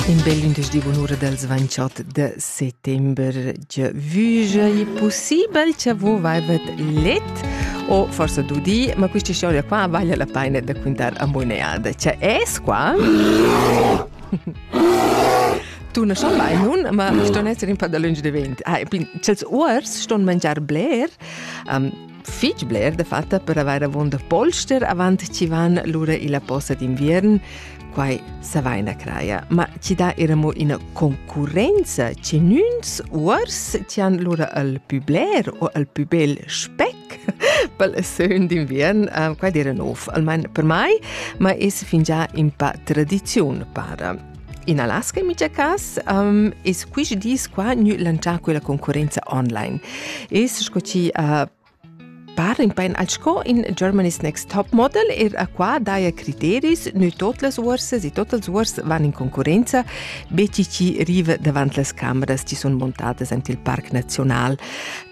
In bel ündeschdi bunura dals 28 de settember gia vüja è possibel cha vo vaivet let o forsa dudi, ma questa storia qua vale la pena da quintare a moneada. Cioè es qua? tu na schon mai nun, ma ston essere un po' da lunge de vent. Ah, e pin, cels uors ston mangiar bler. Um, fitg bler da fatta per avair avunda polster avant chi van lura illa posa d'inviern, quai savaina craja, ma chi dà era mo ina concurrenza chi nüns uors chi han lura al pü bler o al pü bel spec pel sögn d'inviern, uh, quai d'eira nov, almain per mai, ma es fingià in pa tradiziun para. In Alaska, in mica cas, um, es quist dis qua gnü lantschà quella concurrenza online. Es sco chi uh, par in pain al sco in Germany's Next Top Model er a qua daia criteris, noi tot las uorses e tot els uors van in concurenza, be chi chi riva davant las cameras chi sun montadas ant il Parc Nazional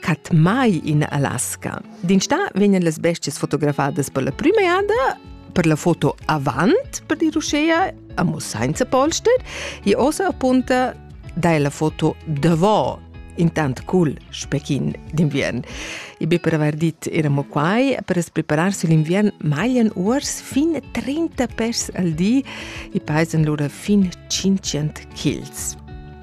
cat mai in Alaska. Din sta vegnan las bestias fotografadas per la prima jada, per la foto avant, per dir uschea, Amo sainza polster, i ossa appunta dai la foto davò intant cul spechin d'inviern. I be per aver dit eramo quai per as prepararsi l'inviern maglian uors fin 30 pes al di i paisen lura fin 500 kils.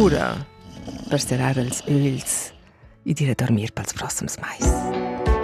Ura per serrar els ögls e dir a dormir pels prossems mais.